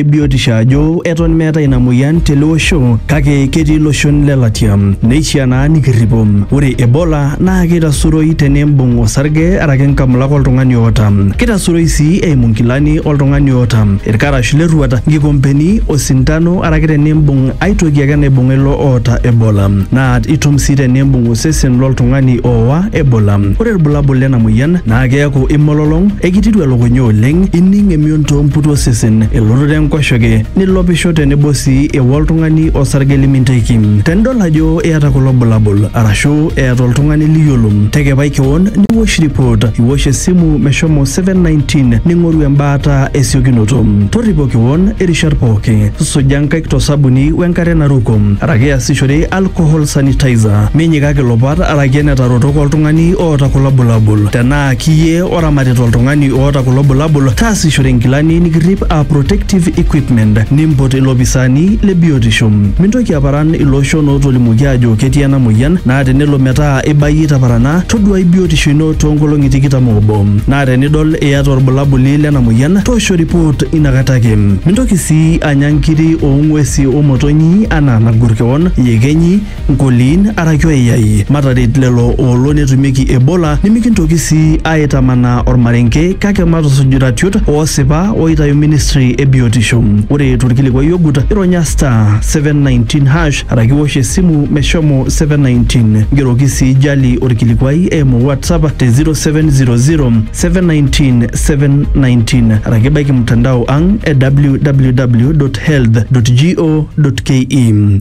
ebiotisho ajo eton meetae ina moyian tele osho kake ketii iloshon le latia neishiaa naa nikirripo. Ore Ebola naa keitasuroi tenimbung osarge araki inkamulak oltung'ani oota. Keitasuroi sii eimu nkilani oltung'ani oota, ilkarash le rruat, nkikompeni, osintano araki tenimbung ai toki ake naibung'a ilo oota Ebola. Naa itum sii tenimbung osesen lo ltung'ani oowa Ebola. Ore ilbulabul lena moyian naa keaku imololong, eikitiru elukunya oleng, ining emion. toomputu osesen, elototo enkoshoke, nilopisho tenebo sii ewa oltung'ani osarge liminteki. Tenidol ajo iyata kulo bulabul arashu eeta oltung'ani liyiolo, tekepai kewon niwosh ripot, iwosh esimu meshomo 719 ning'oru embaata esiokinoto. Torripo kewon irishat pooki, suja nkaik to sabuni wenkare naruko araki iasishore alcohol sanitizer. Minyikaki ilopat araki enetarotok oltung'ani oota kulo bulabul. Tenaa kiyie Oramatita oltung'ani oota kulo bulabul, taasishore nkilani nikirrip aa protective equipment, nimpot ilopisaani le biotisho. Mintoki aparan ilooshon ootolimuoki aajo ketii ena mueyian naa tenelo metaa ibayie itaparana, toduaai biotisho ino toonkolong'i tikitam oobo. Naa tenidol iyata olbulabuli lena mueyian, toosho ripoot ina kata ake. Mintoki sii anya nkiri oo ng'uesi o motonyi anaa nagor kewon, iyekenyi, Nkoliin araki oiyai, mataret lelo oolo netumieki Ebola nimikintoki sii aaitamanaa olmarenke kake matusuj iratiot oosipa ooitayu ministry e biotisho. Ore tolkilikuai ogut, ironya *719# araki iwosh esimu meshomo 719. Ngeroki sii Jali olkilikuai eimu WhatsApp te 0700-719-719 araki baiki mtandao ang e www.health.go.ke.